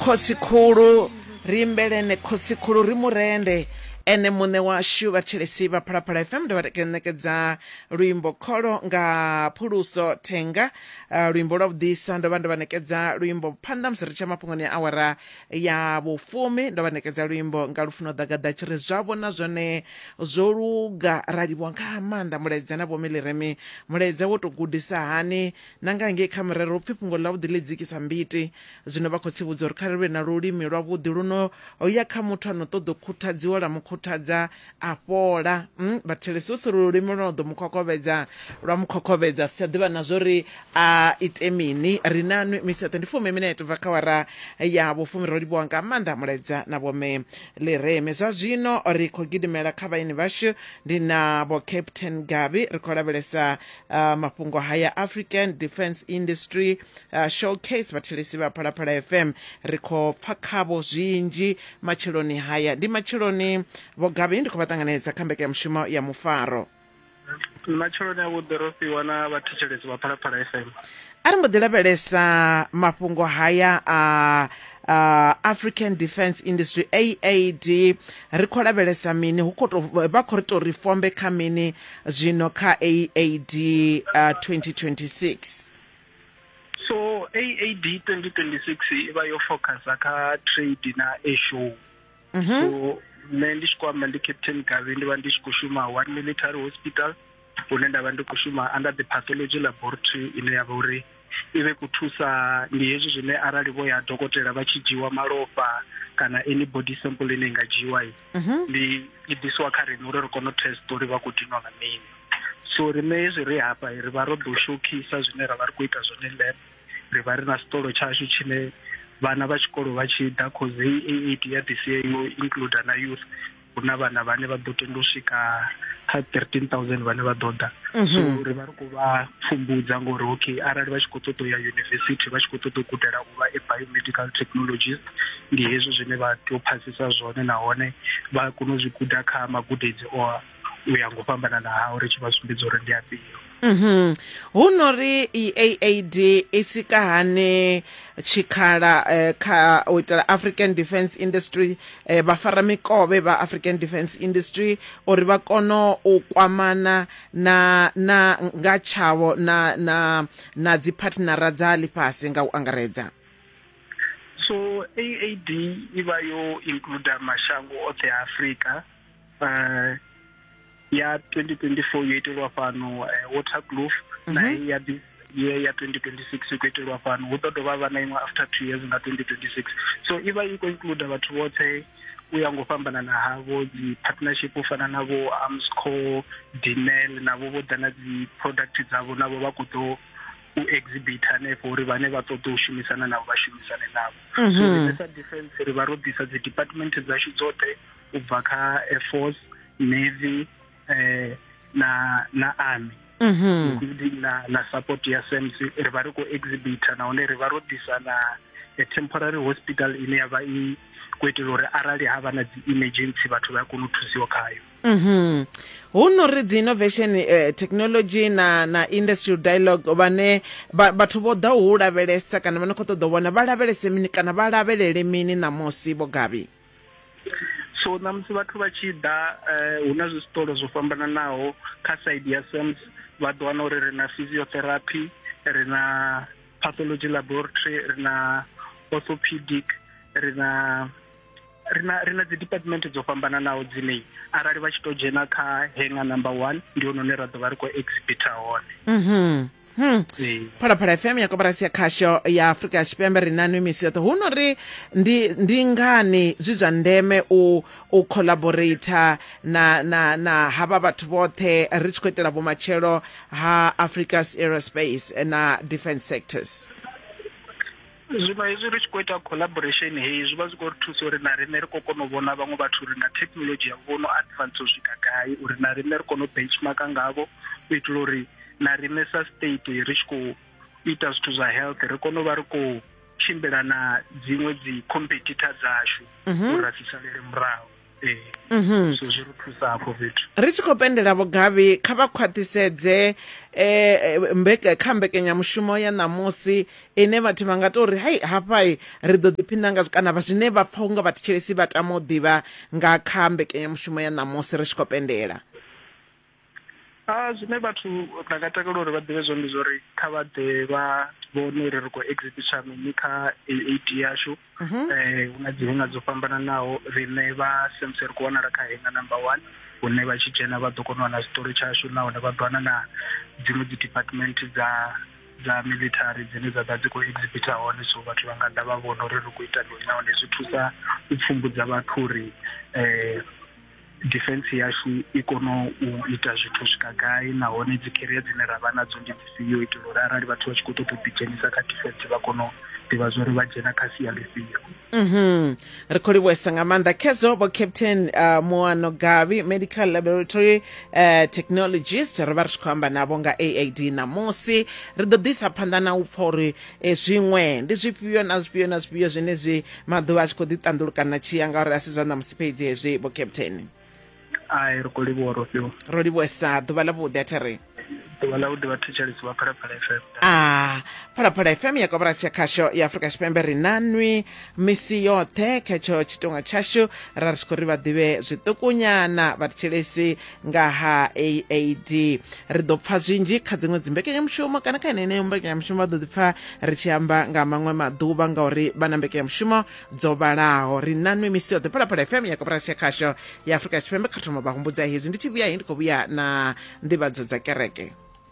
khosikhulu ri imbelene khosikhulu ri murende ene muṋe washu vhathetshelesi vha phalaphala fm ndo vha ṋekedza luimbo kholo nga phuluso thenga uh, luimbo lwa vhuḓisa ndo vha ndo vha ṋekedza luimbo phanḓa musi ri tsha mafhungoni ya awara ya vhufumi ndo vha ṋekedza luimbo nga lufuno ḓagaḓa tshi ri zwa vhona zwone zwo luga ra livhuwa nga maanḓa mulaedza na vhomi liremi mulaedza wo tou gudisa hani na nga ngei kha murero u pfi fhungo ḽavhuḓi ḽi dzikisa mbiti. Zwino vha khotsi vhudzwa uri kha ri vhe na lulimi lwavhuḓi lu no ya kha muthu a no ṱoḓa u khuthadziwa lwa mu khuthadza a fhola. Um vhathelesi hu si lulimi lwo no ḓo mu khokhovhedza lwa mu khokhovhedza a si tsha ḓivha na zwo ri a ite mini. Ri na nwi misi yoṱhe ndi fumi minete bva kha awara ya vhufumi. Ro livhuwa nga maanḓa mulaedza na vhomme Ḽireme. Zwa zwino ri khou gidimela kha vhaeni vhashu ndi na vho Captain Gabi ri khou lavhelesa Uh, mafhungo haya african defence industry uh, showcase vhathelesi vha phalaphala fm ri khou pfa khavho zwinzhi matsheloni haya ndi matsheloni vhogavhi ndi khou vha ṱanganedza kha mbekanyamushumo ya mufaro matsheloni avhuḓi ro fhiwa na vhathetshelesi vha phalaphala fm a ri mbo ḓi lavhelesa mafhungo haya a uh, african defence industry aad ri khou lavhelesa mini hu khou vha khou ri tou ri fombe kha mini zwino kha aad uh, 2026 so aad 2026 i vha yo focusa kha trade na asho mm -hmm. so nṋe ndi tshi khou amba ndi captain gavi ndi vha ndi tshi khou shuma one military hospital hune nda vha ndi khou shuma under the pathology laboratory ine ya vha uri i vhe ku thusa ndi hezwi zwine arali vho ya dokotela vha tshi dzhiwa malofha kana any body sample ine i nga dzhiwa mhm. ndi i ḓisiwa kha riṋe uri ri kone u test uri vha khou dinwa nga mini so riṋe hezwi ri hafha ri vha ro ḓo shokhisa zwine ra vha ri khou ita zwone lab ri vha ri na sitolo tshashu tshine vhana vha tshikolo vha tshi ḓa cause hei eight ya ḓisiya yo include na youth hu na vhana vhane vha ḓo tenda u swika kha 13000 vhane vha ḓo ḓa mhm. so ri vha ri khou vha pfumbudza ngori okay arali vha tshi khou ṱoḓa u ya yunivesithi vha tshi khou ṱoḓa u gudela u vha e biomedical technologist ndi hezwi zwine vha tea u phasisa zwone nahone vha kone u zwi guda kha magudedzi o u ya ngo fhambanana hao ri tshi vha sumbedza uri ndi afhio Mhm. Hu no ri EAAD i sika hani tshikhala eh, kha u itela African Defence Industry eh, vha fara mikovhe vha African Defence Industry uri vha kono u kwamana na na nga tshavho na na na dzi partnera dza lifhasi nga u angaredza. So AAD i vha yo includer mashango oṱhe a Afrika eh ya 2024 yo itelwa fhano eh, waterkloof mhm. na hei ya this year ya 2026 i khou itelwa fhano hu ḓo dovha vha na iṅwe after two years nga 2026 so i vha i khou include vhathu vhoṱhe u ya ngo fhambanana havho dzi partnership u fana na vho amsco dinel navho vho ḓa na dzi product dzavho navho vha khou ḓo u exhibit hanefho uri vhane vha ṱoḓa u shumisana navho vha shumisane navho mhm. so ri sa defense ri vha ro ḓisa dzi department dzashu dzoṱhe u bva kha air force navy eh na na army mhm including na na support ya SAMC ri vha ri khou exhibitor nahone ri vha ro ḓisa na a temporary hospital ine ya vha i khou itela uri arali ha vha na dzi emergency vhathu vha a kona u thusiwa khayo mhm hu no ri dzi innovation eh, technology na na industrial dialogue vhane vha- vhathu vho ḓa u lavhelesa kana vha no khou ṱoḓa u vhona vha lavhelese mini kana vha lavhelele mini ṋamusi vho gabi so ṋamusi vhathu vha tshi ḓa eh, hu na zwitolo zwo fhambananaho kha side ya sams vha ḓo wana uri ri na physiotherapy ri na pathology laboratory ri na orthopedic ri na rina rina dzi department dzo fhambananaho dzine arali vha tshi to dzhena kha hanger number 1 ndi hone ra ḓo vha ri khou exhibitor hone mhm Hmm. phalaphala fm ya koporasi ya khasho ya afurika tshipembe ri nanu misi yoṱhe hu no ri ndi, ndi ngani zwi zwa ndeme u, u collaborator na, na, na havha vhathu vhoṱhe ri tshi khou itela vhumatshelo ha africa's aerospace na defence sectors zwino hezwi ri tshi khou ita collaboration heyi zwi vha zwi khou ri thusa uri na riṋe ri khou kona u vhona vhaṅwe vhathu uri na thekhinolodzhi yavho vho no advance u swika gai uri na riṋe ri kone u benchmarka ngavho u itela uri na riṋe sa state ri tshi khou ita zwithu zwa health ri kone u vha ri khou tshimbila na dziṅwe dzi competitor dzashu mhm. uri ra si salele murahu Mhm. zwi ri thusa hafho fhethu ri tshi khou pendela vhogavhi kha vha khwaṱhisedze um kha mbekanyamushumo ya ṋamusi ine vhathu vha nga tou ri hai hafhai ri ḓo ḓiphina ngazwo kana vha zwine vha pfha unga vhathetshelesi vha tama u ḓivha nga kha mbekanyamushumo ya ṋamusi ri tshi khou pendela a zwine vhathu nda nga takalela uri vha ḓivhe zwone ndi zwori kha vha ḓe vha vhone uri ri khou exhibitor mini kha AAD yashu mhm. eh hu na dzi henga dzo fhambananaho riṋe vha SAMC ri khou wanala kha henga number 1 hune vha tshi dzhena vha ḓo kona u wana zwiṱori tshashu nahone vha ḓo wana na dziṅwe dzi department dza dza military dzine dza ḓa dzi khou exhibita hone so vhathu vha nga ḓa vha vhona uri ri khou ita mini nahone zwi thusa u pfumbudza vhathu uri um Defense yashu i kono u ita zwithu swika gai nahone dzi career dzine ra vha nadzo ndi dzifhio u itela uri arali vhathu vha tshi khou ṱoḓa u ḓidzhenisa kha defense vha kono u ḓivha zwa uri vha dzhena kha sia ḽifhio mhm ri khou livhuwesa nga maanḓa khezwo vho captain uh, moano gavi medical laboratory uh, technologist ri vha ri tshi khou amba navho nga aad ṋamusi ri ḓo ḓisa phanḓa na u pfha uri e zwiṅwe ndi zwifhio na zwifhio na zwifhio zwine zwi maḓuvha a tshi khou ḓi ṱanḓulukana tshi ya ngauri a si zwa ṋamusi fhedzi hezwi vho captain ai ri khou livhuwa ro fhiwa ro livhuwesa ḓuvha ḽa vhuḓi a thi ri ḓuvha ḽa vhuḓi vhathetshelesi vha phalaphala fm a phalaphala fm ya koporasi ya khasho ya afurika tshipembe ri na nwi misi yoṱhe kha tsho tshitonga tshashu ra ri tshi khou ri vha ḓivhe zwiṱukunyana vhathetshelesi nga ha aad ri ḓo pfa zwinzhi kha dziṅwe dzimbekanyamushumo kana kha yeneyo mbekanyamushumo vha ḓo ḓi pfa ri tshi amba nga maṅwe maḓuvha ngauri vha na mbekanyamushumo dzo vhalaho ri na nwe misi yoṱhe phalaphala fm ya koporasi ya khasho ya afurika tshipembe kha thoma vha humbudza hezwi ndi tshi vhuya he ndi khou vhuya na nḓivhadzo dza kereke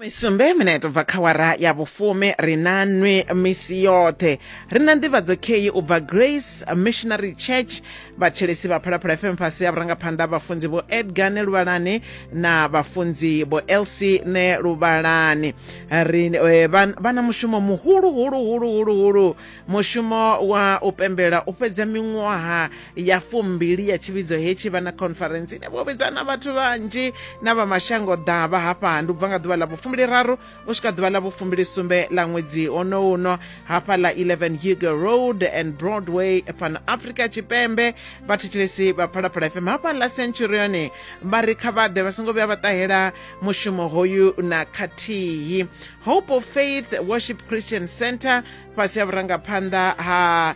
fumisumbe minete ubva kha wara ya vhufumi ri na nwi misi yoṱhe ri na nḓivhadzo kheyi u bva grace missionary church vhatshelesi vha phalaphala fm fhasi ya vhurangaphanḓa vhafunzi vho edgar ne luvhalani na vhafunzi vho elc ne luvhalani ri eh, vha vha na mushumo muhulu hulu hulu hulu hulu mushumo wa u pembela u fhedza miṅwaha ya fumbili ya tshivhidzo hetshi vha na conference ine vho vhidza na vhathu vhanzhi na vha mashango ḓavha hafha ndi u bva nga ḓuvha ḽa vhufumbili raru u swika ḓuvha ḽa vhufumbili sumbe ḽa ṅwedzi ono uno hafha ḽa 11 hugo road and broadway pan africa tshipembe vhathetshelesi vha phalaphala fm hafha ḽa centurion vha ri kha vhaḓe vha songo vhuya vha ṱahela mushumo hoyu na khathihi hope of faith worship christian center fhasi ha vhurangaphanḓa ha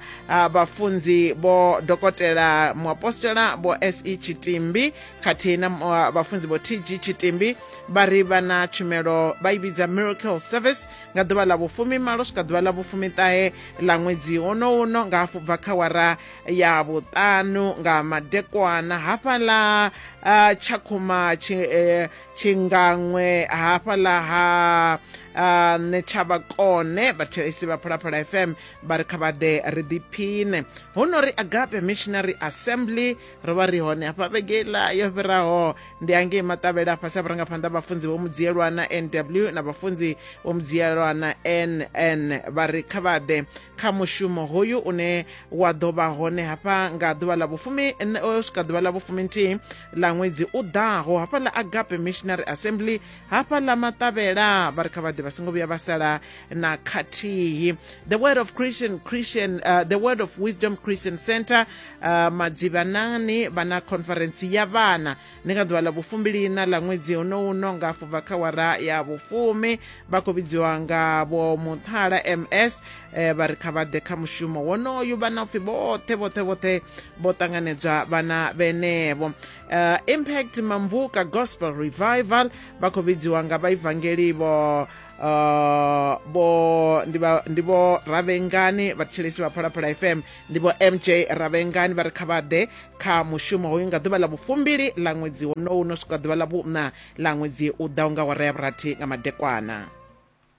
vhafunzi vho dokotela muapostola vho se tshitimbi khathihi na vhafunzi vho tg tshitimbi vha ri vha na tshumelo vha i vhidza miracle service nga ḓuvha ḽa vhufumi malo swika ḓuvha ḽa vhufumi ṱahe ḽa ṅwedzi wono uno nga hafhu bva kha wara ya vhuṱanu nga madekwana hafhaḽa tshakhuma eh, tshingaṅwe hafhaḽa ha nṋe tsha vhakone vhathelesi vha phalaphala fm vha ri kha vha ḓe ri ḓiphine hu no ri agape missionary assembly ro vha ri hone hafha vhegela yo fhiraho ndi angei maṱavhela fhasi a vhurangaphanḓa vhafunzi vho mudziyelwana nw na vhafunzi vho mudziyelwana nn vha ri kha vha ḓe kha mushumo hoyu une wa ḓo vha hone hafha nga ḓuvha ḽa vhufumi swika ḓuvha ḽa vhufumi nthihi ḽa ṅwedzi u ḓaho hafha ḽa agape missionary assembly hafha ḽa maṱavhela vha ri kha vhaḓe vha songo vhuya vha sala na khathihi the word of christian christian uh, the word of wisdom christian center uh, madzivhanani vha na conference ya vhana ndi nga ḓuvha ḽa vhufumbiliina ḽa ṅwedzi uno uno nga afho bva kha wara ya vhufumi vha khou vhidziwa nga vho muthala ms eh, vha ri kha vha ḓe kha mushumo wonoyu vhana upfhi vhoṱhe vhoṱhe vhoṱhe vho ṱanganedzwa vhana vhenevho uh, impact mamvuka gospel revival vha khou vhidziwa nga vhaivangeli vho uh, vho ndi vho ravhengani vhatshilisi vha phalaphala fm ndi vho mj ravhengani vha ri kha vha ḓe kha mushumo hoyu nga ḓuvha ḽa vhufumbili ḽa ṅwedzi wonowu no swika ḓuvha ḽa vhuṋa ḽa ṅwedzi u ḓaho nga wara ya vhurathi nga madekwana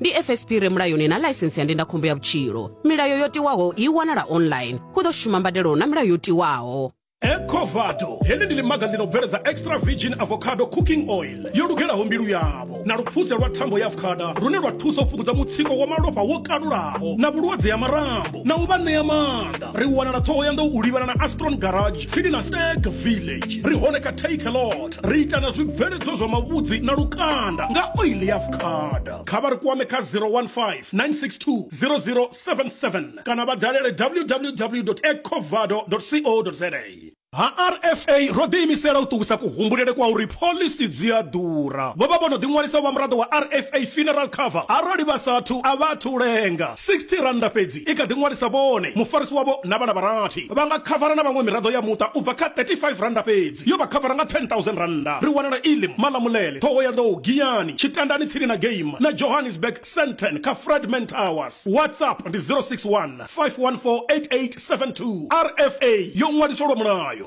ndi fsp re mulayoni na ḽaisensi ya ndindakhombo ya vhutshilo milayo yo tiwaho i wanala online hu ḓo shuma mbadelo na milayo yo tiwaho ecovado heḽi ndi ḽimaga ḽi no bveledza extra virgin avocado cooking oil yo lugelaho mbilu yavho na luphuse lwa thambo ya avocada lune lwa thusa u fhungudza mutsiko wa malofha wo kalulaho na vhulwadze ya marambo na u vha ṋea maanḓa ri wanala ṱhohoyanḓou u livhana na astron garage tsini na stag village ri hone kha takelot ri ita na zwibveledzwa zwa mavhudzi na lukanda nga oili ya fukada kha vha ri kwame kha 015 962 0077 kana vha dalele www ecovado co za ha rfa ro ḓiimisela u ṱuwisa kuhumbulele kwa uri phoḽisi dzi a ḓura vho vha vho no ḓiṅwalisa vha muraḓo wa rfa funeral cover arali vha sathu a vha athu lenga 60 rannda fhedzi i kha ḓi ṅwalisa vhone, mufarisi wavho na vhana vha rathi. Vha nga khavara na vhaṅwe miraḓo ya muṱa u bva kha R35 fhedzi. Yo vha khavara nga R10,000. Ri wanala Elim, Malamulele, Thohoyandou, Giyani, Tshitandani tsini na Game na Johannesburg, Sandton kha Fredman Towers. WhatsApp ndi 061 514 8872. RFA yo ṅwaliswa lwa mulayo.